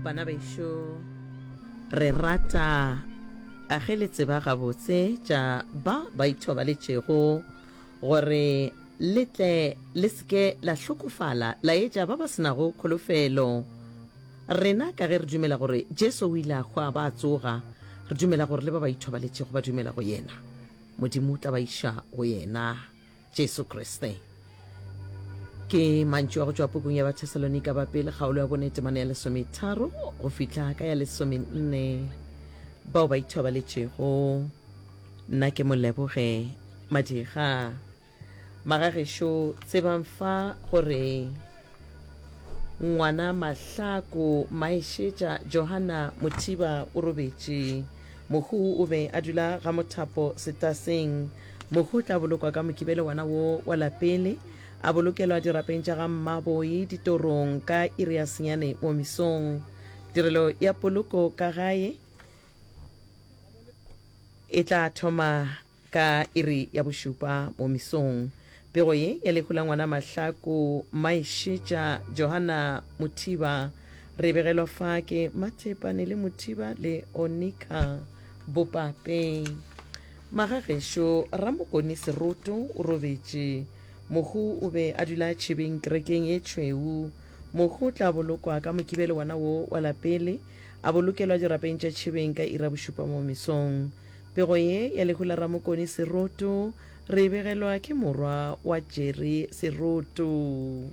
bana bešo re rata a ge le tseba gabotse tša ba ba ithobaletšego gore le tle le seke la hlokofala la etša ba ba senago kholofelo rena ka ge re dumela gore jesu o ile a hwa ba tsoga re dumela gore le ba ba ithobaletšego ba dumela go yena modimo o tla ba iša go yena Jesu Kriste. Ke mantšu a go tšwa pukung ya Bathesalonika ba Pele kgaolo ya bone temana ya lesometharo go fihla ka ya lesomenne. Bao ba ithobaletšego, nna ke Moleboge Madiga. Magagešo, tsebang fa gore. Ngwana Mahlaku Maešetša Johana Mothiba o robetše. Mohu o be a dula ga Mothapo Setaseng. Mohu o tla bolokwa ka Mokibelo wana wo wa lapele, a bolokelwa dirapeng tša ga Mmaboi Ditorong ka iri ya senyane mo mesong. Tirelo ya poloko ka gae e tla thoma Ka iri ya bošupa mo mesong, pego ye ya lehu la ngwana Mahlaku Maešetša Johanna Mothiba re e begelwa fa ke Mathepane le Mothiba le Onika Bopape. Magagešo Ramokoni Seroto o robetše. Mohu o be a dula tšhebeng kerekeng ye tšhweu. Mohu o tla bolokwa ka Mokibelo wona wo wa lapele, a bolokelwa dirapeng tša tšhebeng ka iri ya bošupa mo mesong. Pego ye ya lehu la Ramokoni Seroto re e begelwa ke morwa wa Jerry Seroto.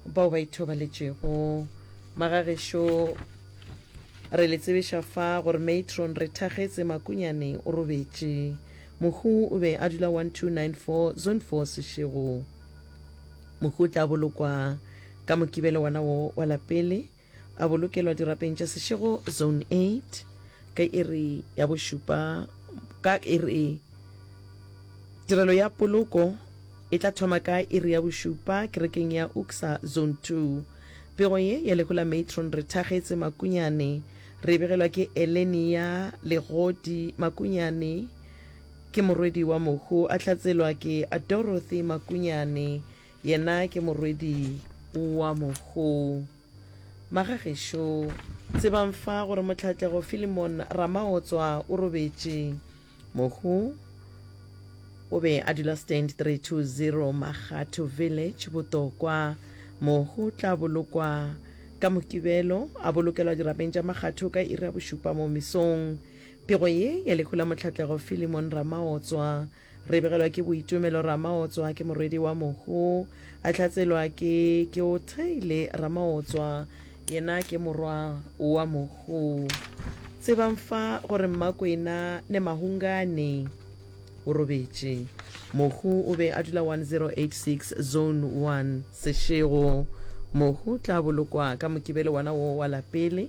Bao ba ithobaletšego magagešo re le tsebiša fa gore Matron Rethagetse Makunyane o robetše. Mohu o be a dula 1294 Zone 4 Seshego. Mohu o tla bolokwa ka Mokibelo wona wo wa la pele. a bolokelwa dirapeng tša sešego zone 8 ka iri ya bošupa ka iri tirelo ya poloko e tla thoma ka iri ya bošupa kerekeng ya uksa zone 2 pego ye ya lehu la matron re thagetse makunyane re begelwa ke elenia legodi makunyane ke morwedi wa mohu a hlatselwa ke dorothy makunyane Yena ke morwedi wa mogou. Magagešo. Tsebang fa gore Mohlatlego Philemon Ramaotswa o robetše. Mohu o be a dula Stand 320 Makgatho Village, Botokwa. Mohu o tla bolokwa ka Mokibelo, a bolokelwa dirapeng tša Makgatho ka iri ya bošupa mo mesong. Pego ye ya lehu la Mohlatlego Philemon Ramaotswa Re begelwa ke Boitumelo Ramaotswa, ke morwedi wa mohu, a hlatselwa ke Keothaile Ramaotswa, yena ke morwa wa mohu. Tsebang fa gore Mmakwena ne Mahungane o robetše. Mohu o be a dula 1086 Zone 1, Seshego. Mohu tla bolokwa ka Mokibelo wona wo wa lapele.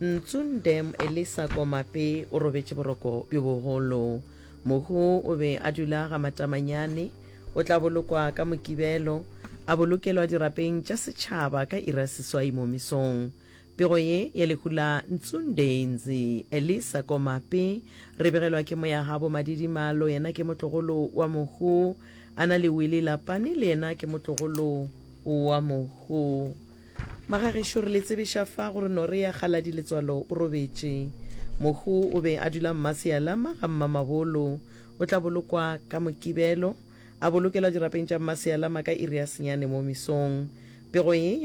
Ntsundem Elisa Komape o robetše boroko bjo bogolo. Mohu o be a dula ga Matamanyane. O tla bolokwa ka Mokibelo, a bolokelwa dirapeng tša setšhaba ka iri ya seswai mo mesong. Pego ye ya lehu la Ntsundeinzi Elisa Komape re begelwa ke moyagabo Madidimalo, yena ke motlogolo wa mohu, a na le Willie Lapane, le yena ke motlogolo wa mohu. Magagešo re le tsebiša fa gore Norea Galadi Letswalo o robetše. Mohu o be a dula Mmasealama ga Mmamabolo. O tla bolokwa ka Mokibelo, a bolokelwa dirapeng tša Mmasealama ka iri ya senyane mo mesong. Pego ye ya.